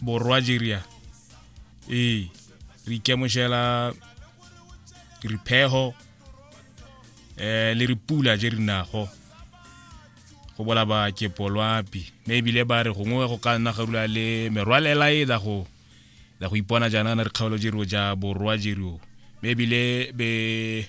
borwa jeria ee re ikamogela riphego eh le ripula je re nago go bola ba ke polwapi mme ebile ba re gongwe go ka nna garula le merwalela e la go la go ipona jaana re kgaolo jero ja borwa jero mme ebile be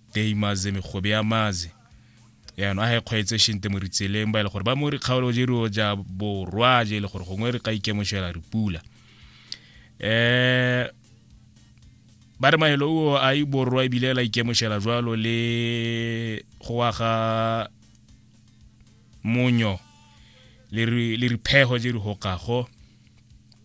tei maze megobe ya maze yaanong a ga e kgweetse shente mo ritseleng ba e le gore ba mo dikgaolo je rio ja borwa je e le gore gongwe re ka ikemošela re pula um ba re mahelo o a e borwa ebile la ikemošela jwalo le go wa ga monyo le riphego je di hokago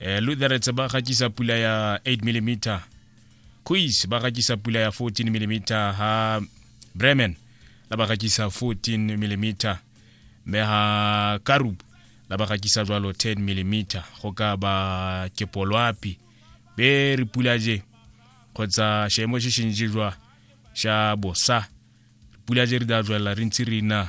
eh, lutherets ba gatisa pula ya 8 mm quiz ba gatisa pula ya 14 mm ha bremen la ba gatisa 14 mm me ha karub la ba gatisa jwalo 10 mm go ka ba kepolwapi be re pula je kgotsa šemo se šentši jwa xa bosa pula je re da jwelela re ntse re na